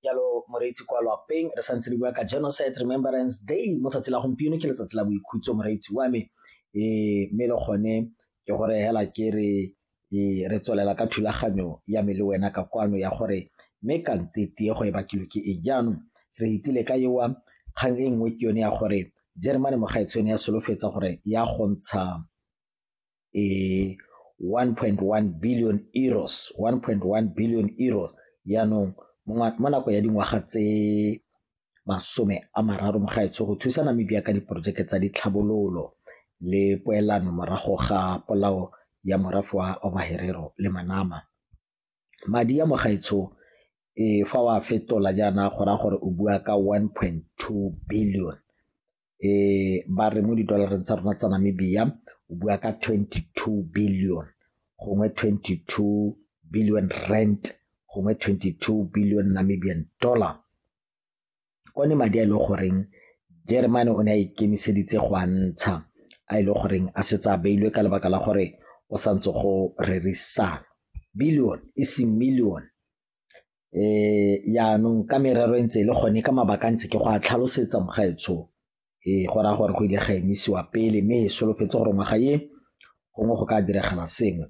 jalo moreetsi kwa lapeng re santse re bua ka genocide remembrance day mo tsatsi la gompieno ke letsatsi la boikhutso moreetsi wa me um mme le gone ke gore hela ke re e, re tswelela ka thulaganyo ya me le wena ka kwano ya gore mme ka ntete go e bakilwe ke e jaanong re itile ka ewa kgang e nngwe ke yone ya gore jeremane mogaetshone ya solofetsa gore ya go ntsha e 1.1 billion euros 1.1 billion euros yaanong mo nako ya dingwaga tse masome a mararo mo gaetsho go thusa namibia ka diporojeke tsa ditlhabololo le poelano morago ga polao ya morafe wa omaherero le manama madi a mo gaetsho e fa wa fetola jaana go raya gore o bua ka one point two billion e ba re mo di-dollareng tsa rona tsa namibia o bua ka twenty two billion gongwe twenty two billion rent gongwe twenty two billion namibian dollar one madi a e leng goreng jeremane o ne a ikemiseditse go a ntsha a e leng goreng a setse a beilwe ka lebaka la gore o sa ntse go rerisana billion e seng million um yaanong ka merero e ntse e le gone ka mabaka a ntse ke go a tlhalosetsa mogaetsho ee go raya gore go ile ga emisiwa pele mme e solofetse gore ngwaga e gongwe go ka diragala sengwe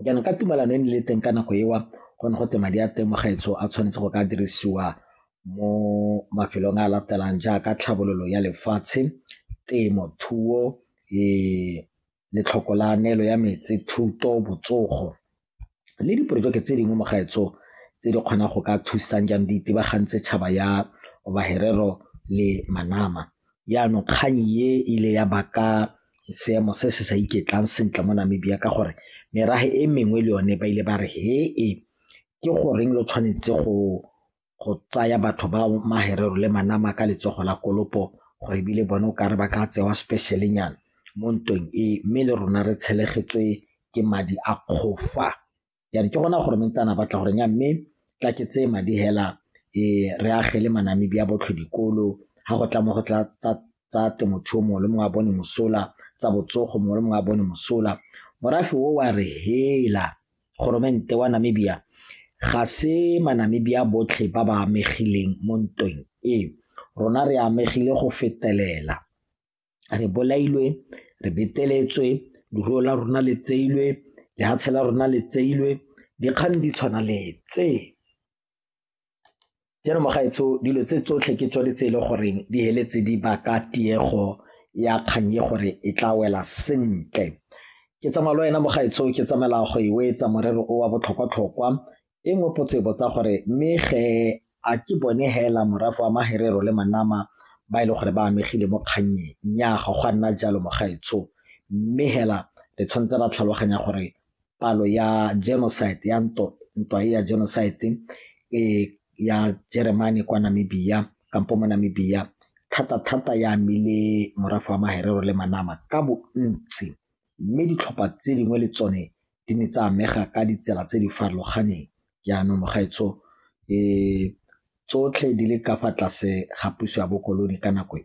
jaanong ka tumalano e ne le teng ka nako ewa go ne go te madi a temogetso a tshwanetse go ka dirisiwa mo mafelong a latelang jaaka tlhabololo ya lefatshe temo thuo e letlhoko la neelo ya metsi thuto botsogo le diporojeke tse dingwe mogaetso tse di kgonang go ka thusang jang di itebagantse tšhaba ya baherero le manama Jaanong kgang e ile ya baka seemo se se sa iketlang sentle mo Namibia ka gore merafe e mengwe le yone ba ile ba re he e ke goreng lo tshwanetse go go tsaya batho ba maherero le manama ka letsogo la kolopo gore ebile bone o kare ba ka tsewa specialenyana mo ntweng e mme le rona re tshelegetswe ke madi a kgofa yane ke gona gore mentana batla gore nya mme tla ke tseye madi hela e re agele manamedi a botlhe dikolo ga go tla mo go tla tsa temothuo mongwe le mongwe a bone mosola tsa botsogo mongwe le mongwe a bone mosola morafe o wa re hela goromente wa namibia ga se manamibia botlhe ba ba amegileng mo ntweng e rona re amegile go fetelela re bolailwe re beteletswe leruo la rona le tseilwe lehatshe la rona le tseilwe dikgang di tshwana le tse jaanong magaetsho dilo tse tsotlhe ke tsone tse e le goreng di heletse di baka tiego ya kgang ye gore e tla wela sentle ke tsamaya le wena mogaetsho ke tsamaela go e wetsa morero o wa botlhokwa-tlhokwa E nngwe potso e botsa gore mme ge a ke bone hela morafe wa maherero le manama ba e le gore ba amegile mo kgannyeng nnyaa ga go a nna jalo mogaetsho mme hela re tshwanetse ra tlhaloganya gore palo ya genocide ya ntwa e ya genocide e ya jeremane kwa namibia kampo mo namibia thata-thata ya amile morafe wa maherero le manama ka bontsi mme ditlhopha tse dingwe le tsone di ne tsa amega ka ditsela tse di farologaneng jaanong gaetsho tsotlhe di le ka fa tlase ga puso ya bokolone ka nako e